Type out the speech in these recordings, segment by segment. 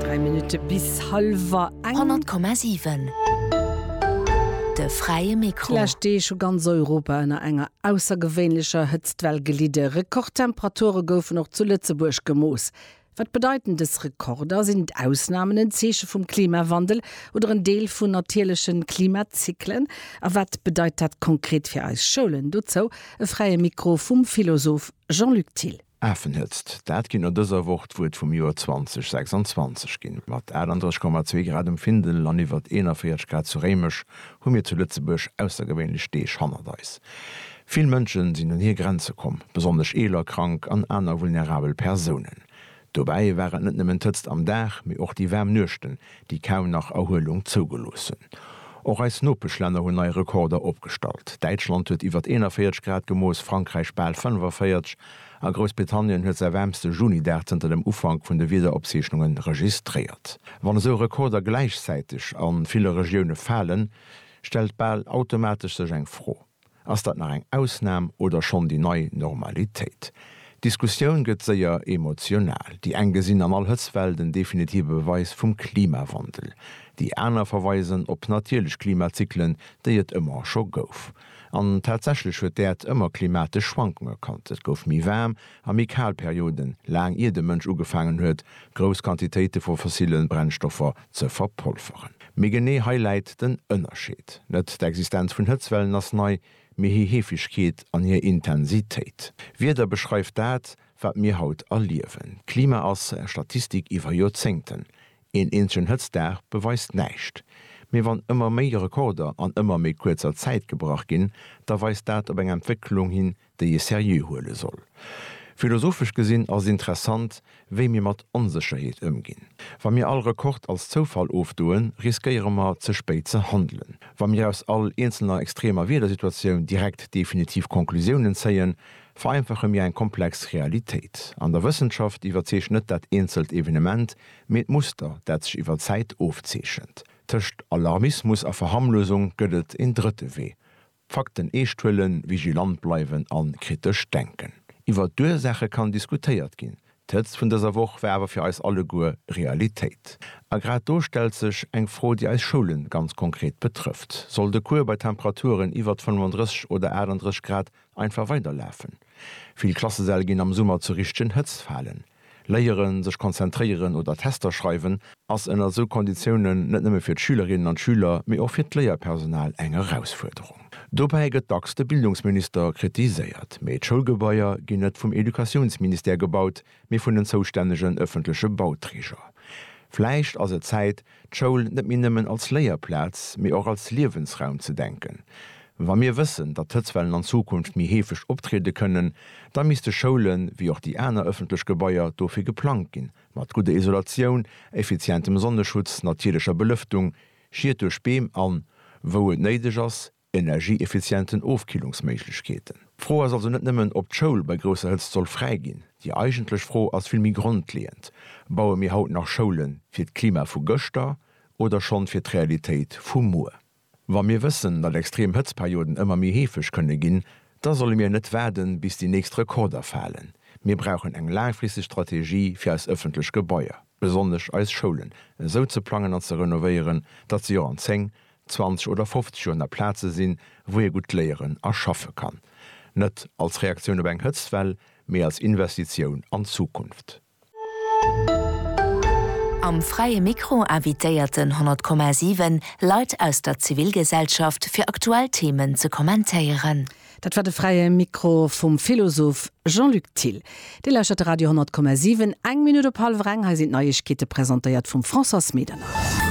Dräi Minutte bis hallwer eng. 100,7 De fräie Mikro. D'lescht Deeg hu ganz Europa ënner enger aussergewéinlecher Hëtztwell gelidde. Rekordtemperature goufen och zu Lëtzebuerg gemooss. Wat bedeiten dës Rekorder? Sinn d'Ausnamen en Zeeche vum Klimawandel oder en Deel vun natierleche Klimazyklen? A wat bedeit dat konkret fir eis Schoulen? Dozou e fräie Mikro vum Philosoph Jean-Luc Thill. Afenhëtzt, dat kéint no dëser Woch d'Wuert vum Joer 2026 ginn. Mat 38,2 Grad um Findel an iwwer 41 Grad zu Réimech hu mir zu Lëtzebuerg aussergewéinlech Deeg hannert eis. Vill Mënsche sinn un hir Grenze komm, besonnesch eeler, krank an aner vulnerabel Persounen. Dobäi war et net nëmmen d'Hëtzt am Dag, mee och déi waarm Nuechten, déi kaum nach Erhuelung zougelooss hunn. Och eis Nopeschlänner hunn nei Rekorder opgestallt. Däitschland huet iwwert 41 Grad gemooss, Frankräich bal 45 a Groussbritannien huet säi waarmste Juni-Dag zënter dem Ufank vun de Wiederopzeechnunge registréiert. Wann esou Rekorder gläichzäiteg a ville Regioune falen, stellt bal automatesch sech eng Fro. Ass dat nach eng Ausnam oder schonn déi nei Normalitéit? D'Diskussioun gëtt séier emotional. Déi eng gesinn an all Hëtztwell den definitive Beweis vum Klimawandel. Déi aner verweisen op natierlech Klimazyklen, déi et ëmmer scho gouf. An tatsächlech huet d'Äerd ëmmer klimatesch Schwankunge kannt. Et gouf méi waarm a méi kal Perioden, laang ier de Mënsch ugefaangen huet, grouss Quantitéite vu fossille Brennstoffer ze verpolveren. Mee genee hei läit den Ënnerscheed. Net d'Existenz vun Hëtzwellen ass nei, mee hir Heefegkeet an hir Intensitéit. Wieder beschreift dat, wat mir haut erliewen. D'Klima ass Statistik iwwer Joerzéngten. Een eenzegen Hëtztdag beweist näischt. Mee wann ëmmer méi Rekorder an ëmmer méi kuerzer Zäit gebrach ginn, da weist dat op eng Entwécklung hin, déi ee seriö huele soll. Philosophesch gesinn ass et interessant, wéi mir mat Onsécherheet ëmginn. Wa mir all Rekord als Zoufall ofdoen, riskéiere mer, ze spéit ze handelen. Wa mir aus all eenzelner extremer Wiedersituatioun direkt definitiv Conclusiounen zéien, vereinfache mir eng komplex Realitéit. An der Wëssenschaft iwwerzeecht net dat eenzelt Evenement, mee d'Muster, dat sech iwwer Zäit ofzeechent. Tëscht Alarmismus a Verharmlosung gëtt et een drëtte Wee, D'Fakten eescht huelen, vigilant bleiwen a kritesch denken. Iwwer d'Ursaache kann diskutéiert ginn. D'Hëtzt vun dëser Woch war awer fir eis alleguer Realitéit. A grad do stellt sech eng Fro, déi eis Schoule ganz konkret betrëfft, Soll de Cours bei Temperaturen iwwer 35 oder 38 Grad einfach weiderlafen? Vill Klassesäll ginn am Summer zur richtegen Hëtzt falen. Léieren, sech konzentréieren oder Tester schreiwen ass ënner esou Konditiounen net nëmme fir d'Schülerinnen an d'Schüler, mee och fir d'Léierpersonal eng Erausfuerderung. Dobäi gëtt dacks de Bildungsminister kritiséiert, mee d'Schoulgebaier ginn net vum Educatiounsministère gebaut, mee vun den zoustännegen ëffentleche Bauträger. Vläicht ass et Zäit, d'Schoul net méi nëmmen als Léierplaz, mee och als Liewensraum ze denken. Wa mir wëssen, datt d'Hëtzwellen an Zukunft méi heefeg optriede kënnen, da misste Schoulen, wéi och déi aner ëffentlech Gebaier, dofir geplangt ginn, mat gudder Isolatioun, effizientem Sonneschutz, natierlecher Belëftung, Schied duerch Beem an, wou et néideg ass, energieeffizienten Ofkillungsméiglechkeeten. D'Fro ass also net nëmmen, ob d'Schoul bei grousser Hëtzt soll fräi ginn. Déi eigentlech Fro ass vill méi grondleeënd, Baue mir haut nach Schoule fir d'Klima vu gëschter oder schonn fir d'Realitéit vu muer? Wa mir wëssen, datt extrem Hëtztperioden ëmmer méi heefeg kënne ginn, da solle mir net waarden, bis déi nächst Rekorder falen. Mir brauchen eng laangfristeg Strategie fir eis ëffentlech Gebaier, besonnesch eis Schoulen, esou ze plangen an ze renovéieren, datt se och an 10, 20 oder 50 Joer na Plaze sinn, wou ee gutt léieren a schaffe kann. Net als Reaktioun op eng Hëtztwell, mee als Investitioun an d'Zukunft. Am Fräie Mikro invitéiert den 100,7 Leit aus der Zivilgesellschaft fir aktuell Themen ze kommentéieren. Dat war de Fräie Mikro vum Philosoph Jean-Luc Thill. Dir lauschtert de Radio 10,7. Eng Minutt op hallwer eng, hei sinn d'Neiegkeete presentéiert vum Françoise Medernach.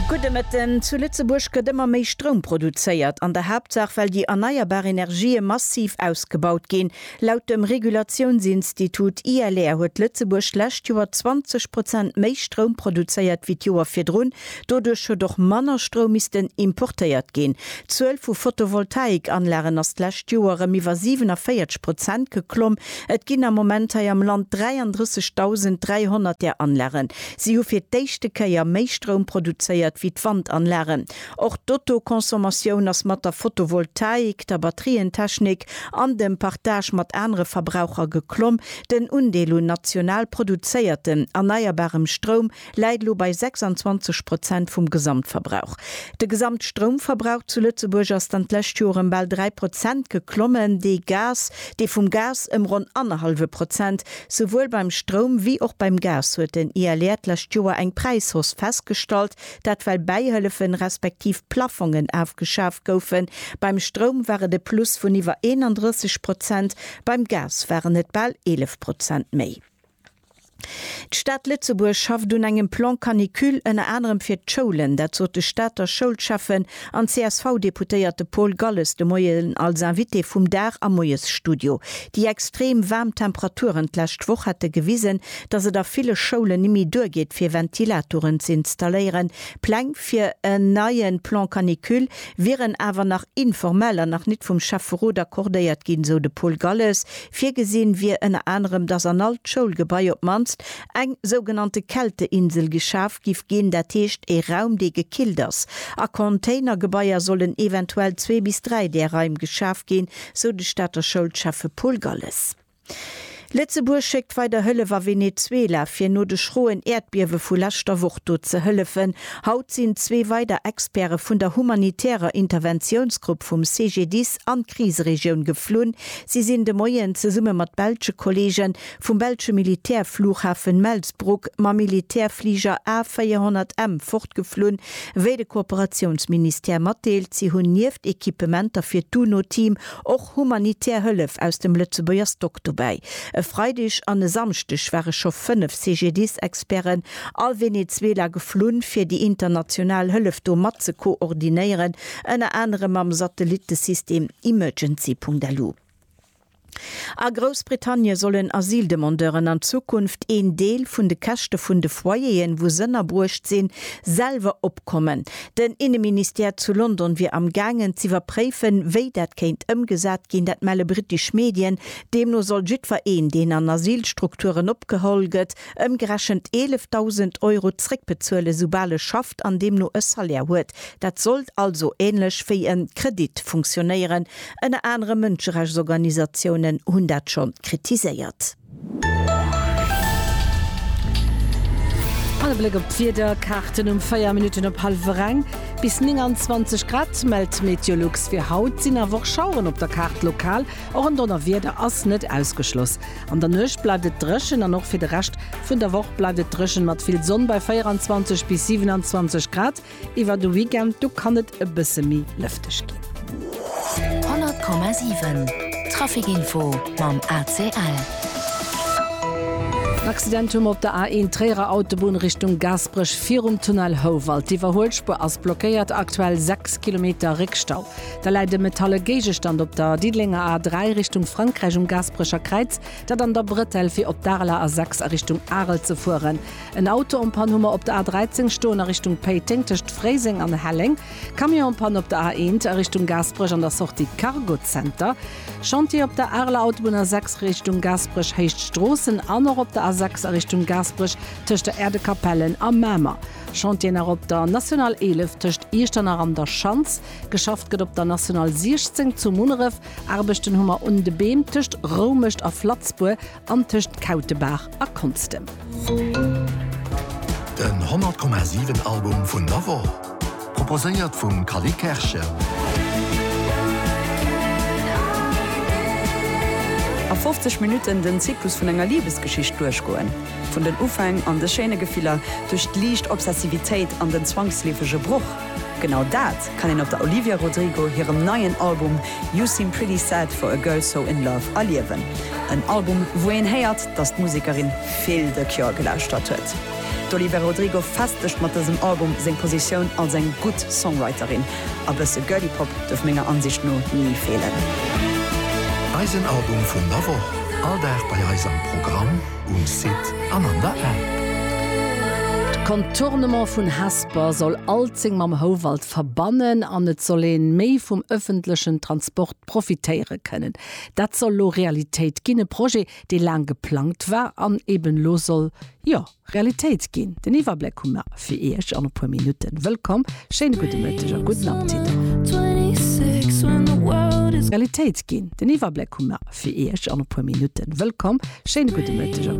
Gudde Mëtten. Zu Lëtzebuerg gëtt ëmmer méi Stroum produzéiert, an der Haaptsaach well déi erneierbar Energië massiv ausgebaut ginn. Laut dem Regulatiounsinstitut ILR huet Lëtzebuerg d'lescht Joer 20 Prozent méi Stroum produzéiert wéi d'Joer virdrun. Doduerch huet och manner Stroum missten importéiert ginn. D'Zuel vu Photovoltaikanlagen ass d'lescht Joer erëm iwwer 47 Prozent geklomm. Et ginn am Moment hei am Land 33.300 där Anlagen. Si hu fir d'éischte Kéier méi Stroum produzéiert wéi d'Wandanlagen. Och d'Autoconsommation ass mat der Fotovoltaik, der Batterientechnik an dem Partage mat anere Verbraucher geklomm. Den Undeel un national produzéiertem erneierbarem Stroum läit elo bei 26 Prozent vum Gesamtverbrauch. De Gesamtstroumverbrauch zu Lëtzebuerg ass dann d'lescht Joer ëm bal 3 Prozent geklommen, dee Gas, dee vum Gas ëm ronn annerhallwe Prozent. Souwuel beim Stroum wéi och beim Gas huet den ILR d'lescht Joer eng Präishausse festgestallt, Dat well Bäihëllefen, respektiv Plaffongen afgeschaaft goufen. Beim Stroum war et e Plus vun iwwer 31 Prozent, beim Gas waren et bal 11 Prozent méi. D'Stad Lëtzebuerg schafft un engem Plan Canicule ënner anerem fir d'Schoulen. Dat sot de Stater Schoulschäffen An d'CSV-Deputéierte Paul Galles de Moien als Invité vum Dag am Moiesstudio. Déi extrem waarm Temperaturen d'lescht Woch hätte gewisen, datt et a ville Schoulen nemme duergeet fir Ventilatoren ze installéieren. Pläng fir en neie Plan canicule wieren awer nach informell a nach nit vum Schäfferot accordéiert ginn, sou de Paul Galles. Virgesinn wier ënner anerem, datt an all d'Schoulgebai op d'mannst eng sougenannte Kälteinsel geschaf giff ginn, dat heescht ee Raum dee gekillt ass. A Containergebaier sollen eventuell zwee bis dräi där Raim geschaf ginn, sou de Stater Schoulschäffe Paul Galles. Lëtzebuerg schéckt weider Hëllef a Venezuela, fir no de schroen Äerdbiewe vu leschter Woch do ze hëllefen. Haut sinn zwee weider Experte vun der humanitärer Interventiounsgrupp vum CGDIS an d'Kriseregioun geflunn. Si sinn de Moien zesumme mat belsche Kolleegen vum belsche Militärflughafen Melsbroek mam Militärfliger A400M fortgeflunn, wéi de Kooperatiounsministère matdeelt. Si hunn nieft Equipementer fir d'UNO-Team och humanitär Hëllef aus dem Lëtzebuerger Stock dobäi. E Freideg an e Samschdeg ware scho fënnef CGDIS-Experten a Venezuela geflunn, fir déi international Hëllef do mat ze koordinéieren, ënner anerem mam Satellittesystem Emergency.lu. A Groussbritannie sollen Asyldemandeuren an Zukunft een Deel vun de Käschte vun de Foyeren, wou s'ënnerbruecht sinn, selwer opkommen. Den Inneministère zu London wier am gaangen z'iwwerpréifen, wéi dat kéint ëmgesat ginn. Dat melle brittesch Medien. Deemno soll jiddwer een, deen an Asylstrukturen opgeholl gëtt, ëmgerechent 11.000 Euro zréckbezuelen, soubal e schafft an deemno e Salaire huet. Dat sollt also änlech wéi e Kredit funktionéieren Ënner anerem Mënscherechtsorganisatiounen hunn dat schonn kritiséiert. An e Bléck op d'Wiederkaarten um 4 Minutten op hallwer eng. Bis 29 Grad mellt Meteolux fir haut, sinn awer och Schaueren op der Kaart lokal. Och en Donnerwieder ass net ausgeschloss. An der Nuecht bleift et dréchen an och fir de Rescht vun der Woch bleift et dréchen mat vill Sonn bei 24 bis 27 Grad. Iwwer de Weekend du kann et e bësse méi lëfteg ginn. 100,7 Traficinfo mam ACL. En Accident hu mer op der A1 Tréierer Autobunn Richtung Gaasperech virum Tunnel Houwald. D'Iwwerhuelspuer ass blockéiert, aktuell 6 Kilometer Réckstau. Da läit e metalle Géigestand op der Diddelenger A3 Richtung Frankräich um Gaasperecher Kräiz, dat an der Bretelle fir op d'Areler A6 a Richtung Arel ze fueren. En Auto en Panne hu mer op der A 13 stoen a Richtung Péiteng tëscht Fréiseng an Helleng. Camion en Panne op der A 1 a Richtung Gaasperech an der Sortie Cargo Center. Chantier op der Areler Autobunn A 6 Richtung Gaasperech Héicht Stroossen an och op der A 6 a Richtung Gaasperech tëscht der Äerdekapellen a Mamer. Chantieren nach op der National 11 tëscht Iechternach an der Schanz. Geschafft gëtt op der National 16 zu Munneref. Aarbechten hu mer un de Beem tëscht Roumecht a Flatzbur. an tëscht Kautebaach a Konstem. Den 100,7 Album vun der Woch, proposéiert vum Cally Kerschen. A 50 Minutten den Zyklus vun enger Libesgeschicht duerchgoen, vun den Ufäng an de schéine Gefiller, duerch d'liicht Obsessivitéit an den zwangsleefege Broch, genau dat, kann een op der Olivia Rodrigo hirem neien Album You Seem Pretty Sad For A Girl So In Love erliewen. En Album, wou een héiert, dass d'Musekerin vill The Cure gelauschtert huet. D'Olivia Rodrigo festegt mat dësem Album seng Positioun als eng gutt Songwriterin. A bësse Girly Pop duerf menger Ansicht no ni feelen. Eisen Album vun der Woch, all Dag bei eis am Programm. um Site an an der App. D'Contournement vun Hesper soll Alzeng mam Houwald verbannen an et soll een méi vum ëffentlechen Transport profitéiere kënnen. Dat soll lo Realitéit ginn, e Projet dee laang geplangt war an eben lo soll, jo, Realitéit ginn. Den Iwwerbléck hu mer. fir Iech an e puer Minutten. Wëllkomm, schéine gudde Mëtteg a gudden Apptit. Realitéit ginn, den Iwwerbléck hu mer fir Iech an e puer Minutten. Wëllkomm, schéine gudde Mëtteg a.